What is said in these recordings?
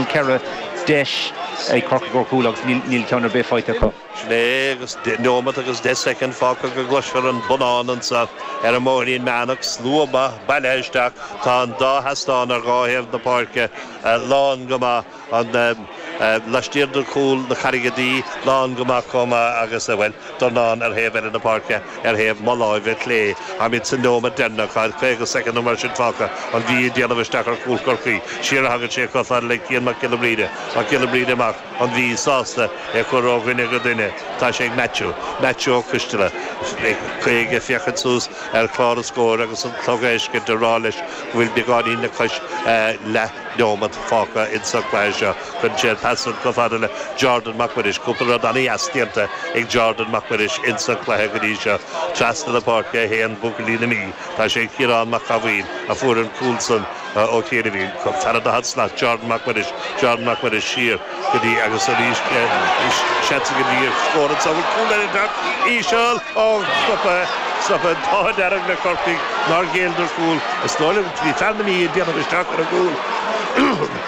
Ceithre deis ag Corcaigh ó chúl agus níl ceann ar bith faighte acu. Neomat agus deich soicind fágtha go gcloisfear an bonnán annso ar an mBóithrín Meánach. Slua maith bailithe isteach. Tá an dá sheastán ar dhá thaobh na páirce lán go maith. An laistiar de chúl na Carraige Duibhe lán go maith comh maith agus a bhfuil. dornán ar thaobh eile na páirce, ar thaobh mo láimhe clé. Táimíd sa neomat deireannach, tá caoga soicind nó mar sin fágtha, an Mhí ag déanamh isteach ar chúl Chorcaí. Siar a thagann sé chomh fada le Cian Mac Giolla Bhríde. Mac Giolla Bhríde amach, an Mhí sásta é a chur ó dhuine go duine. Tá sé ag Maitiú. Maitiú Ó Coistealla. Tá sé ag féachaint suas ar chlár an scóir agus an clog anois ag rá leis go bhfuil beagáinín le cois leath neomat fágtha insa leath seo. Cuireann sé an pas san chomh fada le Jordan Mac Muiris. Cúpla rud an-dheas déanta ag Jordan Mac Muiris ins an cluiche go dtí seo. Trasna na páirce a théann buachaillí na Mí. Tá sé ag Ciarán Mac Cathmhaoil a fuair an cúl san ó chianaibhín. fan an daichead slat Jordan Mac Muiris. Jordan Mac Muiris siar go dtí agus arís seans ag an Mhí ar scór anseo. Bhfuil cúl ar an gcárta? Íseal. Ó stoptha. An t-ádh dearg le Corcaigh nár ghéilleadar cúl. Is dóigh liom go bhí fear na Mí ag déanamh isteach ar an gcúl.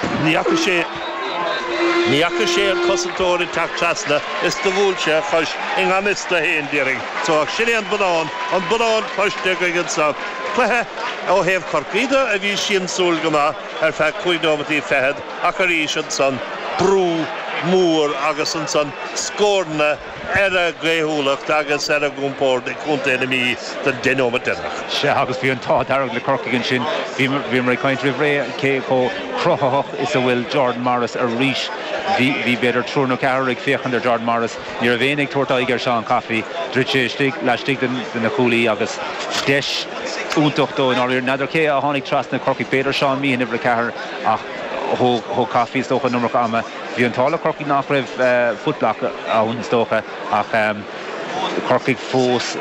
Ní fhaca sé an cosantóir ag teacht trasna is do bhuail sé a chois i ngan fhios dó fhéin i ndáiríre. So ach sin é an bonnán, an bonnán cloiste againn annso. Cluiche ó thaobh Chorcaí de a bhí siamsúil go maith ar feadh cúig nóimeataí fichead ach arís annsan brú mór agus annsan scóranna ar a gcaothúlacht agus ar a gcompórd ag Contae na Mí don deich nóimeat deireanach. Sea, agus bhí an t-ádh dearg le Corcaigh ansin. Bhíomar ag caint roimh ré cé chomh cruthaitheach is a bhfuil Jordan Morris arís. Bhí, b'fhéidir, triúr nó ceathrar ag féachaint ar Jordan Morris. Ní raibh éinne ag tabhairt aghaidh ar Seán Coffey. Dhruid sé isteach laistigh de na cuaillí agus deis iontach dó i ndáiríre. N'fheadar cé a tháinig trasna Corcaigh. B'fhéidir Seán Meehan, uimhir a ceathair, ach thóg Coffey, is dócha, an iomarca ama. Bhí an t-ádh le Corcaigh nach raibh footblock ann is dócha ach Corcaigh fós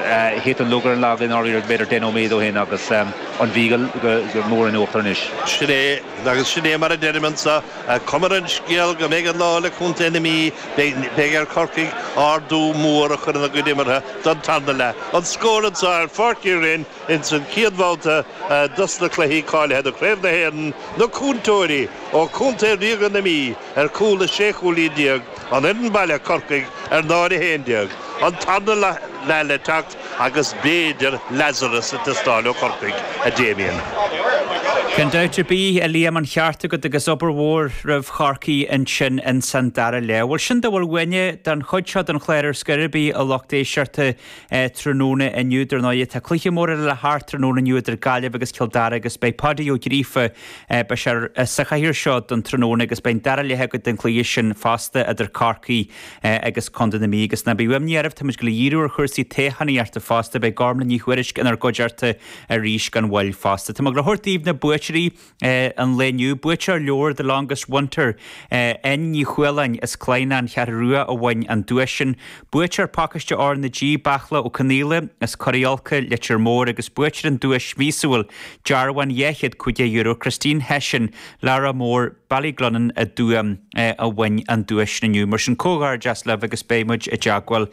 thit an lug ar an lag i ndáiríre b'fhéidir deich nóiméad ó shin agus an Mhí go mór in uachtar anois. Sin é, agus sin é mar a deirim anso, cuma ar an scéal go mbeidh an lá le Contae na Mí, beidh ar Chorcaigh ardú mór a chur ina gcuid imeartha don tarna leath. An scór anso ar Pháirc Uí Rinn. Ins an chéad bhabhta dos na cluichí cáilithe do Chraobh na hÉireann, na cuairteoirí ó Chontae Ríoga na Mí ar chúl is sé chúilín déag, an fhoireann baile, Corcaigh, ar náid a haon déag. An tarna leath le teacht agus b'fhéidir Lazarus ag teastáil ó Chorcaigh, a Damien. Gan dabht ar bith, a Liam, an ceart agat agus obair mhór roimh Chorcaí ansin ins an dara leath. Bhuel, sin a bhfuil uainne den chuid seo den chlár ar scor ar bith, a lucht éisteachta. Tráthnóna inniu, dar ndóigh, tá cluiche mór eile le hart tráthnóna inniu idir Gaillimh agus Cill Dara agus beidh Páidí Ó Gríofa sa chathaoir seo don tráthnóna agus beidh an dara leath againn den gcluiche sin fosta idir Corcaigh agus Contae na Mí agus ná bíodh imní oraibh, táimid ag goil a dhíriú ar chúrsaí toghchánaíochta fosta, beidh Gormlaith Ní Thuairisg inár gcuideachta arís gan mhoill fosta. Tá mé ag goil a thabhairt daoibh na buaiteoirí. an lae inniu. Buaiteoir leabhar The Longest Winter, N. Ní Chualáin as Clainne, an Cheathrú Rua, a bhain an duais sin. Buaiteoir Pacáiste RnaG Beartla Ó Conghaola as Coraí Olca, Leitir Móir, agus buaiteoir an duais mhíosúil dearbhán €250, Christine Hession, Laragh More, Ballyglunin, i dTuaim, a bhain an duais sin inniu. Mar sin, comhghairdeas libh agus beidh muid i dteagmháil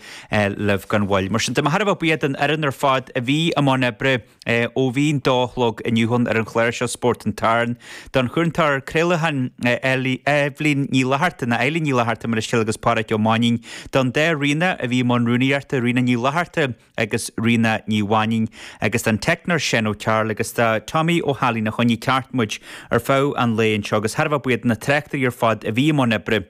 libh gan mhoill. Mar sin de, thar a bheith buíoch don fhoireann ar fad a bhí i mbun oibre. ó bhí an dó a chlog inniu ann ar an chlar seo Spórt an tSathairn. Don chúntóir craolacháin Eibhlín Ní Fhlatharta, nó Eileen Ní Fhlatharta mo leithscéal agus Páraic Ó Mainnín, don dá Ríona a bhí i mbun rúnaíochta, Ríona Ní Fhlatharta agus Ríona Ní Mhainnín, agus don teicneoir Seán Ó Cearúil agus do Tommy Ó hAilín a choinnigh ceart muid ar feadh an lae anseo agus thar a bheith buíoch do na tráchtairí ar fad a bhí i mbun oibre.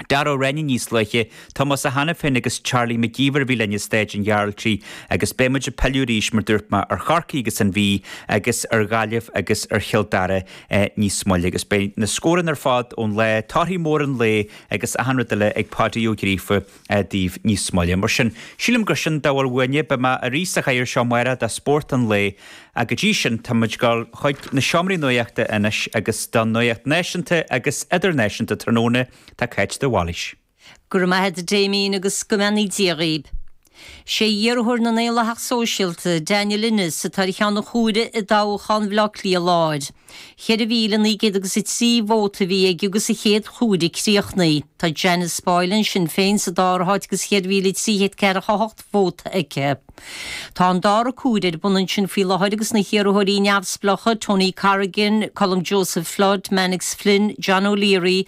Dara Ó Cinnéide níos luaithe, Tomás Ó hAiniféin agus Charlie Mac Íomhair a bhí linn i Staid an Ghearaltraigh agus beidh muid ag pilleadh arís mar dúirt mé ar Chorcaigh agus an Mhí agus ar Ghaillimh agus ar Chill Dara níos moille agus beidh na scóranna ar fad ón lá, torthaí móra an lae agus achan rud eile ag Páidí Ó Gríofa daoibh níos moille. Mar sin, sílim gur sin a bhfuil uainne, beidh mé arís sa chathaoir seo amárach do Spórt an lae Ach go dtí sin táimid ag dul chuig na seomraí nuachta anois agus don nuacht náisiúnta agus idirnáisiúnta tráthnóna tá Cáit de Bhailís. Go raibh maith a'd Damien agus go mbeannaí Dia dhaoib. Sé iarrthóir na nDaonlathach Sóisialta, Daniel Ennis, atá ar cheann an chomhairimh i dtoghchán Bhleá Cliath Láir. 4,903 vóta a bhí aige agus an chéad chomhaireamh críochnaithe. Tá Janice Boylan, Sinn Féin, sa dara háit agus 4,304 vóta aici. Tá an dara comhaireamh ar bun ansin faoi láthair agus na hiarrthóirí neamhspleácha, Tony Corrigan, Colm Joseph Flood, Mannix Flynn, John O'Leary,